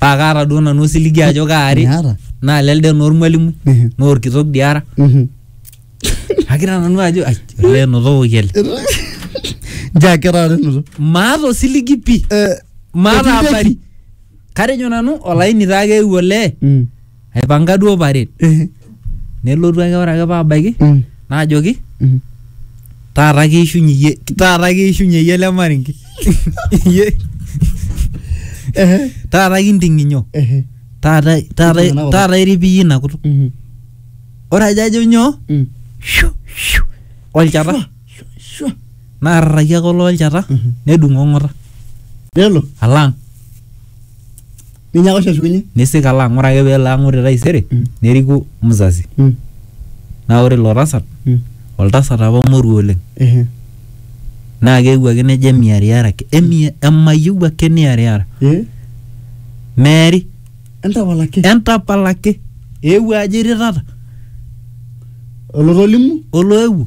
paa kaata duo nanu osiligi ajo kaari Miata. naa lelde naa ormwalimui Mhm. naa orkitok dii ara Mhm. akira nanu ajo ai olee enotokoki ele Njaa kera are inoto. maata osiligi pii Eh, maata Etii deki. abari katejo nanu olaini taa keewuo olee Mm. aipanga duo paret Eh. nelotu ake ore ake paabaiki Mm. naajoki Mm. taata keishunye iyie taata keishunye iyie ele maringi Iyie- Eh. taata kinting'inyo Eh. taata taata Kinting'ina kutuk. taata irip iyie ina kutuk Mhm. ore ajo ajo nyoo Mm. shu shu olchata Shua, shua. naarraki ake olo olchata Mhm. nedung'o ng'ota Nelo. alang Ninyaaka oshi ashukunye. Nisik alo ang'. Ore ake pelo ang' ore taisere, Mm. neriku mzazi. Mm. Na ore ilo tasat, Mm. oltasat apa moruo oleng. Ehe. Na keewuo ake nejo emiariara ake. Emi emayieu ake niariara. Eh? Meeri. Entapal ake. Entapal ake. Eewuo ajo irirrata. Olotolimu? Oloewuo.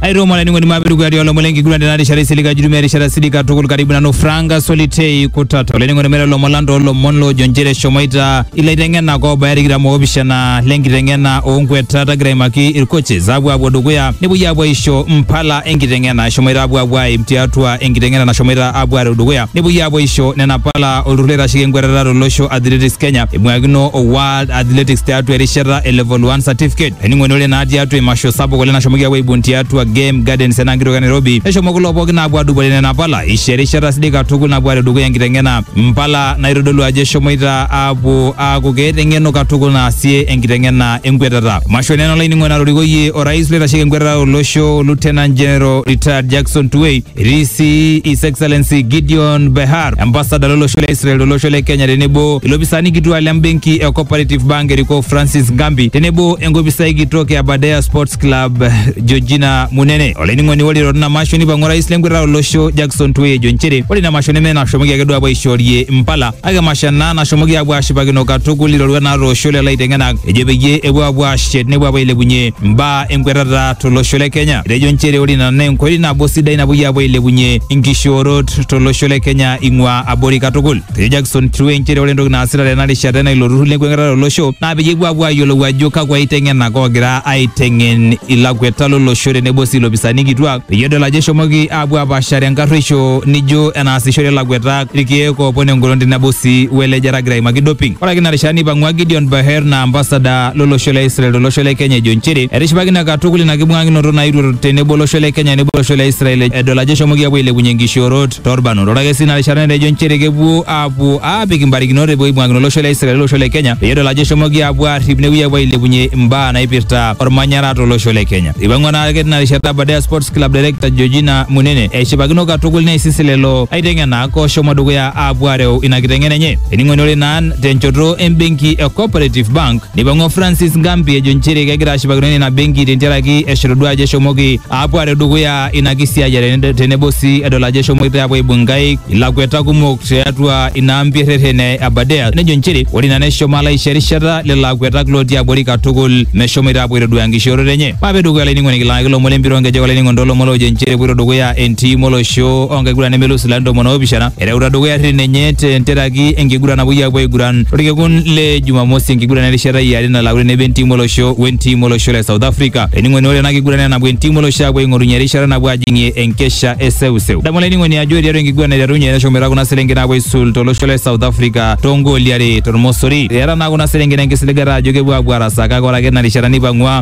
airoma laining'oni mapetu kuyatia olomon lenkiguran tena rishata isilig ajutumia erishata sidik katukul karibu nanu Franka Solitei kutata olainining'oni mele lomon lang toolomon loojo nchere eshomoita ilaiteng'enak oobaya tikitam oopishana lenkiteng'ena oonkuetat agira aimaki ircoaches apuo apuo dukuya nepuoi apuo aisho mpala enkiteng'ena eshomoita apuo apuo aim tiatua enkiteng'ena nashomoita apuo areu dukuya nepuoi apuo aisho nena pala olturur oitasheki enkuetata tolosho Athletics Kenya eibung'akino o World Athletics tiatua erishata e level 1 certificate Ening'oni ore naa tiatua imasho sapuk oleng nashomoki aapuo aibung tiatua Game Gardens ena kitok e Nairobi neshomo kulo pookin aapuo aadupore nena pala isho erishata sidai katukul napuo aareu dukuya enkiteng'ena mpala naitodolu ajo eshomoita aapuo aaku keeta eng'eno katukul naasie enkiteng'ena enkwetata. Masho nena olainining'oni natorikoyie orais loitasheki enkwetata tolosho Lieutenant General Retired Jackson Tuwei Etii sii His Excellency Gideon Behar, ambasada lolosho le Israel tolosho le Kenya tenebo ilopisaani kituak le mbenki e Cooperative Bank erikoo Francis Gambi tenebo enkopisai kitok e Aberdare Sports Club Georgina Munene. Olainining'oni ore eirorita ina masho neipang'u orais lenkwetata olosho Jackson Tuwei ejo nchere ore ina masho neme enashomoki ake duo apuo aishoorie impala Ake masha naa nashomoki aapuo aashipakino katukul iroruat naatoosho lelo aiteng'enak ejo peyie epuo aapuo aashet nepuo aapuo ailepunye mbaa enkwetata tolosho le Kenya. Etejo nchere ore ina naa enkoitoi nabo sidai napuoi aapuo ailepunye inkishoorot tolosho le Kenya ing'ua abori katukul. Etejo Jackson Kirue nchere ore entoki naasita tena rishata ena ilo turrur lenkwetata tolosho naa peyie epuo aapuo aayiolou ajo kakwa aiteng'enak oogira aiteng'en ilakweta lolosho tenebo sii ilopisaani kituak peyie edol ajo eshomoki aapuo apaashare enkarrueisho nijo enaasishore ilakweta irkiek oopon engolon tenebo sii we lejata agira aimaki doping. Ore ake ina rishata neipang'ua Gideon Baher naa ambasada lo losho le Israel to losho le Kenya ejo nchere etishipakine katukul ina kibung'akinoto naetuo tenebo olosho le Kenya neibung olosho le Israel edol ajo eshomoki apuo ailepunye nkishoorot too lbarnot. Ore ake sii ina rishata netejo nchere kepuo aapuo aapik mbarikinot epuo aibung'akino olosho le Israel o losho le Kenya peyie edol ajo eshomoki aapuo aarrip nepuoi aapuo ailepunye mbaa naipirta olmanyara to losho le Kenya. Eipang'ua naa ake tina rishata Aberdare Sports Club Director Georgina Munene eshipakino katukul neisisi lelo aiteng'enak oshomo dukuya aapuo areu ina kiteng'ena enye. Ening'oni ore naa tenchoto embenki e Cooperative Bank neipang'ua Francis Ngambi ejo nchere kegira ashipakino ina benki tentiaraki eshotoduo ajo eshomoki aapuo areu dukuya ina kisiayiare ned- tenebo sii edol ajo eshomoita aapuo aibung nkaik ilakweta kumok tiatua ina ampi erreten e Aberdare nejo nchere ore ina neshomo alo aisho erishata lelo akwetak lootii abori katukul meshomoita aapuo aitoduaa enkishooroto enye. Mape dukuya olainining'oni kilaaki lomon lempira onkejek olainining'oni tolomon loojo nchere epuoito dukuya entim olosho onkiguran nemelus ilarin tomon oopishana ereuta dukuya rrin enye tenteraki enkiguran napuoi apuo aiguran torkekun le Jumamosi enkiguran erishata iare nalauni tenebo entim olosho wentim olosho le South Africa. Olainining'oni ore ena kiguran naa enapuo entim olosho apuo aing'orunye erishata napuo ajing'ie enkesha e seuseu. Adamu olainining'oni ajo tiatua enkiguran naiterunye neshomoita kuna selenken apuo aisul tolosho le South Africa toongooli are tormosori. Eeta naa kuna selenken enkisiligata ajo kepuo apuo arasaa kake ore ake tina rishata neipang'ua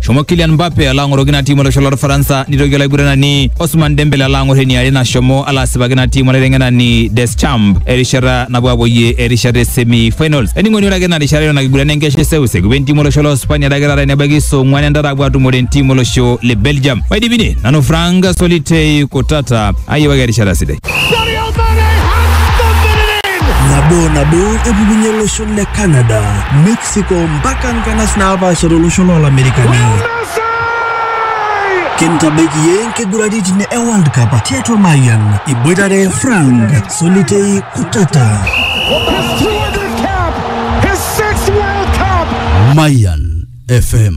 Shomo Kylian Mbappe ala ang'oroki ina tiim olosho lorfaransa nitoki olaiguranani Osman Dembele ala ang'or eniare nashomo ala asipaki ina tiim olaiteng'enani Deschamps erishata napuo apuoyie erishata e semi finals. Ening'oni ore ake ina rishata eton ake iguran enkesha eseuseu epuo entim olosho lo Spania adake taata enebaiki saa ong'uan entata apuo atumore entim olosho le Belgium. Maidipi ine nanu Frank Solitei Kutata ayiewaki erishata sidai. nabo nabo epukunye olosho le Canada mexico mpaka nkanas naapaasha tolosho loolamerikani kintabaiki yie nkiguraritin e world cup tiatua mayian iboitare frank solitei kutata Mayan FM.